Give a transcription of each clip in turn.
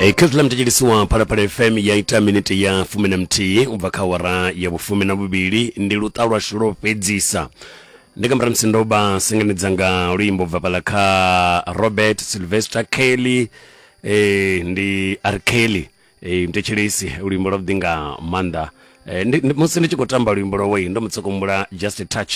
e kha zwiḽa mutetshelisiwa phalaphala fm ya ita minete ya fumi na muthihi u bva kha wara ya vhufumi na vhuvhili ndi luṱa lwashu lwo fhedzisa ndi nga murahu musi ndo vha sengenedza nga luimbo bva fhala kha robert sylvester kelly eh, ndi r kelly Ee, mthetshelesi luimbo lwa vhuḓi nga maanḓa Eh, ndi- ndi- musi ndi tshi khou tamba luimbo lwowei ndo mutsokombula just a touch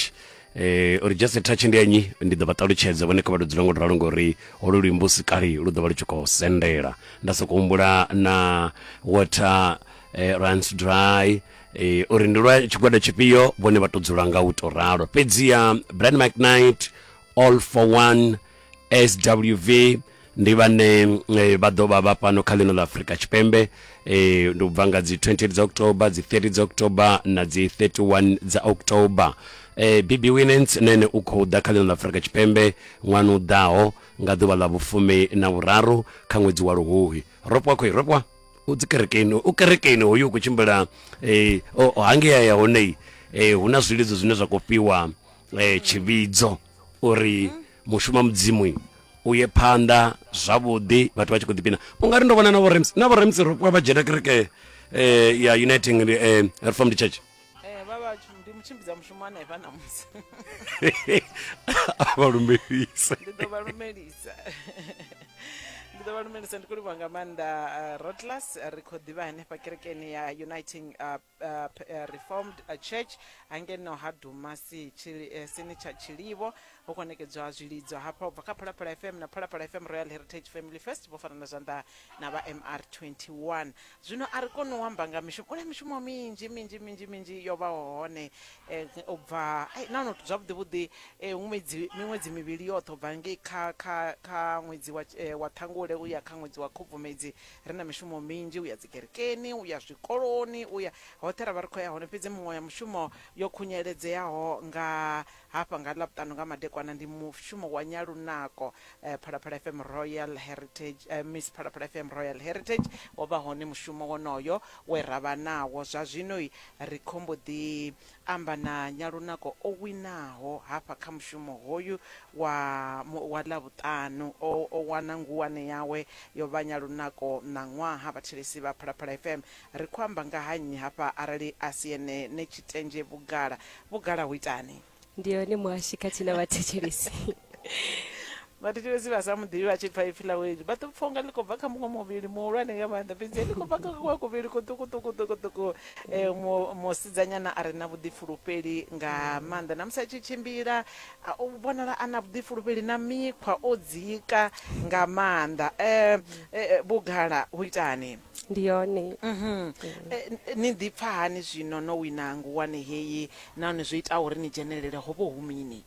Eh, uri just a touch ndi anyi ndi ḓo vha ṱalutshedza vhone kha vha ludzula ngo ralo ngori holu luimbo u si kale lu ḓo vha lu tshi khou sendela nda soko humbula na water eh, runs dry eh, uri ndi lwa tshigwada tshifhio vhone vha to dzula nga u to ralo fhedziha brand mcnight all for one swv ndi vhane eh, vha ḓo vha vha fhano kha ḽino ḽa afurika tshipembe eh, ndi u bva nga dzi 28 dza october dzi 30 dza october na dzi 31 dza october eh, bibi winens na ene u khou ḓa kha ḽino ḽa afurika tshipembe ṅwana u ḓaho nga ḓuvha ḽa vhufumi na vhuraru kha ṅwedzi wa luhuhi ropwa khoi ropwa u dzi kerekeni u kerekeni hoyu u khou tshimbila eh, o- o hangea ya honei eh, hu na zwilidzo zwine zwa khou fhiwa eh, tshivhidzo uri Mushumo wa Mudzimu u ye phanḓa zwavhuḓi vhathu vha tshi khou ḓipina u nga ri ndo vhona na vhorems na vhorems vha vha dzhena kereke eh, ya uniting eh, reformed church eh, ndi mutshimbidza mushumo hanefha namusi a vha lumelise ndi ḓo vha lumelisa ndi ḓo vha lumelisa ndi khou livhuwa nga maanḓa eh, rotlas ri khou ḓivha hanefha kerekeni ya uniting eh, uh, reformed uh, church hangeno ha dumasi chili, uh, sini tsha tshilivho ho konekedzwa zwilidzo hafha ubva kha phalaphala fm na phalaphala fm royal heritage family fest vho farana zwanḓa na vha mr 21 zwino a ri koni u amba nga mishumo ule mishumo minzhi minzhi minzhi minzhi yo vhaho hone eh, u bva nahone zwavhuḓi vhuḓi eh, ṅwedzi miṅwedzi mivhili yoṱhe u bva ngei kha kha kha ṅwedzi wa, eh, wa ṱhangule u ya kha ṅwedzi wa khubvumedzi ri na mishumo minzhi u ya dzikerekeni u ya zwikoloni u ya hoṱhe ra vha ri khou ya hone fhedzi muṅwe ya mushumo yo khunyeledzeaho nga hafha nga ḽavhuṱanu nga madekwana ndi mushumo wa nyalunako eh, phalaphala fm royal heritage eh, miss phalaphala fm royal heritage wo vha hone mushumo wonoyo we ra vha nawo zwa zwino ri khombo ḓi amba na Nyalunako o winaho hafha kha mushumo hoyu wa wa Ḽavhuṱanu. O o wana nguwane yawe yo vha Nyalunako Ṋaṅwaha. Vhathelesi vha Phalaphala FM ri khou amba nga ha nnyi hafha arali a si ene ne Tshitendzhe Vhugala. Vhugala hu itani? Ndi hone muhashi khathihi na vhathetshelesi. vhathetshelesi vha sa muḓivhi vha tshi pfa ipfi ḽawe iḽi vha ḓo pfa unga ḽi khou bva kha muṅwe muvhili muhulwane nga maanḓa fhedzi ḽi khou bva kha kuṅwe kuvhili kuṱukuṱukuṱukuṱuku um musidzanyana a re na vhuḓifulufheli nga maanḓa na musi a tshi tshimbila u vhonala a na vhuḓifulufheli na mikhwa o dzika nga maanḓa um vhugala hu itani ndi yone mhm. eh, ni ḓipfa hani zwino no wina nguwane heyi nahone zwo itaho uri ni dzhenelele ho vho hu mini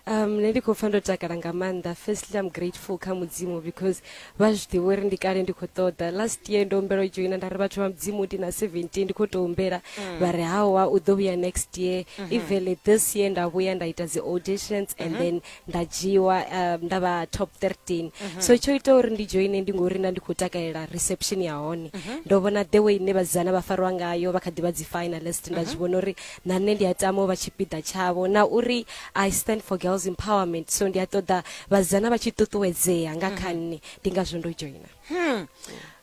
um nṋe ndi khou pfa ndo takala nga maanḓa firstly i'm grateful kha mudzimu because vha zwi ḓivha uri ndi kale ndi khou ṱoḓa last year ndo humbela u joina nda ri vhathu vha mudzimu ndi na 17 ndi khou tou humbela mm. vha ri hawa u ḓo vhuya next year mm-hmm. even this year nda vhuya nda ita dzi auditions and mm-hmm. then nda dzhiwa um, nda vha top 13 mm-hmm. so tsho ita uri ndi joine ndi ngori nda ndi khou takalela reception ya hone ndo vhona the way ine vhasidzana vha fariwa ngayo vha kha ḓi vha dzi finalist nda zwi vhona uri na nṋe ndi a tama u vha tshipiḓa tshavho na uri i stand for girls empowerment so ndi a ṱoḓa vhasidzana vha tshi ṱuṱuwedzea nga kha mhm. nṋe ndi ngazwo ndo joina hmm.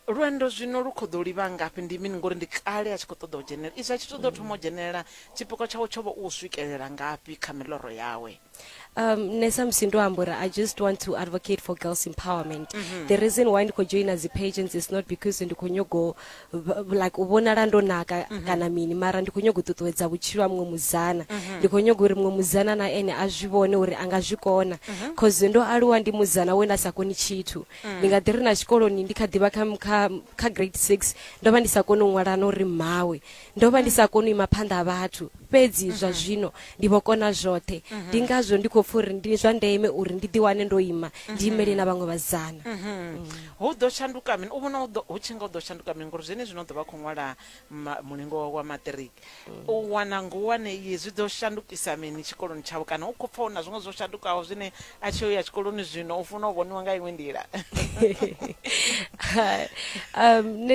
lwendo zwino lu kho ḓo livha ngafhi ndi mini ngori ndi kale a tshi khou ṱoḓa u dzhenelela izwi a tshi ṱoḓa u thoma u dzhenelela tshipikwa tshawe tsho vha u swikelela ngafhi kha miḽoro yawe um, nṋe samusi ndo amba uri i just want to advocate for girls empowerment mm -hmm. the reason why ndi khou joina dzi-pageants is not because ndi khou nyogo like u vhonala ndo naka mm -hmm. kana mini mara ndi khou nyogo u ṱuṱuwedza vhutshilo ha muṅwe muzana mm -hmm. ndi khou nyogo uri muṅwe muzana na ene a zwi vhone uri a nga zwi kona bcause mhm. mm -hmm. ndo aluwa ndi muzana we nda sa koni tshithu mm -hmm. ndi nga ḓi ri na tshikoloni ndi kha ḓivha kha, kha, kha grade six ndo vha ndi sa koni u ṅwalana uri mmawe Ndo vha ndi sa koni u ima phanḓa ha vhathu, fhedzi zwa zwino ndi vho kona zwoṱhe. Ndi ngazwo ndi khou pfa uri ndi zwa ndeme uri ndi ḓiwane ndo ima, ndi imele na vhaṅwe vhasidzana. Hu ḓo shanduka mini? U vhona hu ḓo- hu tshi nga hu ḓo shanduka mini ngori zwenezwino u ḓo vha a khou ṅwala ma- mulingo wawe wa maṱiriki? U wana ngulwane iyi zwi ḓo shandukisa mini tshikoloni tshawe? Kana u khou pfa hu na zwiṅwe zwo shandukaho zwine a tshi yo ya tshikoloni zwino u funa u vhoniwa nga iṅwe nḓila? um, nṋe